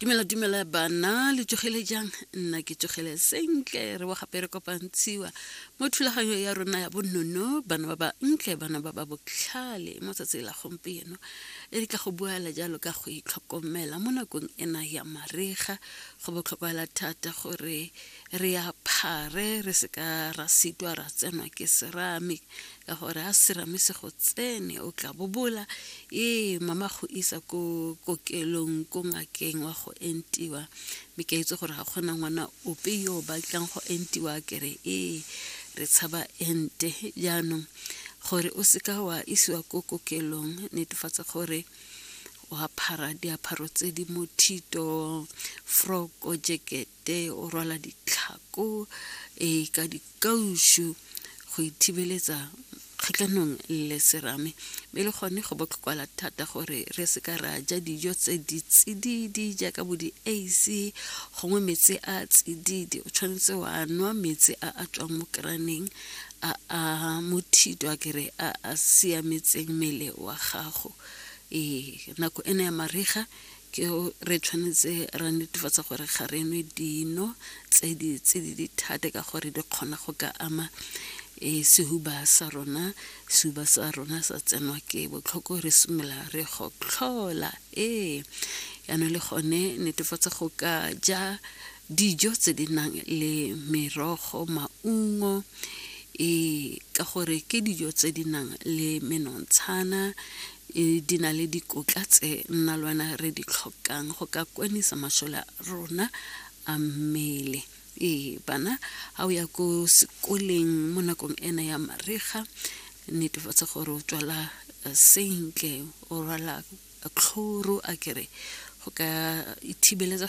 tumelo tumelo bana le tsogile jang nna ke tsogile sentle re wa gape re kopantshiwa mo thulaganyo ya rona ya bonono bana ba ba ntle bana ba ba botlhale mo tsatsi la gompieno e di ka go buela jalo ka go itlhokomela mo nakong ena ya marega go botlhokwela thata gore re aphare re seka ra sitwa ra tsenwa ke serame ka gore a serame se go tsene o tla bobola ee mama go isa ko kokelong ko ngakeng wa go entiwa mme ke itse gore ga kgona ngwana ope yo o batlang go entiwa kere ee re tshaba ente jaanong gore o seka wa isiwa ko kokelong netefatsa gore wa phara diapharo tse di mothito froko jacket te o rwala ditlhako e ka dikaušu go ithibeletsa kgatlhanong le serame mme le gone go botlhokwala thata gore re se ka ra ja dijo tse di tsididi jaaka bo di-ac gongwe metsi a tsididi o tshwanetse wa nwa metsi a a tswang mo keraneng a a mothito a kere a a siametseng mmele wa gago ee nako ena ya mariga ke re tshwanetse ra netefatsa gore ga re nwe dino tse di tse di dithate ka gore di kgona go ka ama e sehuba sa rona sehuba sa rona sa tsenwa ke botlhoko re simolola re gotlhola ee yana le gone netefatsa go ka ja dijo tse di nang le merogo maungo e ka gore ke dijo tse di nang le menontshana e di na le dikotla tse nna le wena re di tlhokang go ka kwanisa masole a rona a mmele ee bana ga o ya ko sekoleng mo nakong ena ya mariga netefatsa gore o tswala eh, sentle o rwala tlhoro a kere go ka ithibeletsa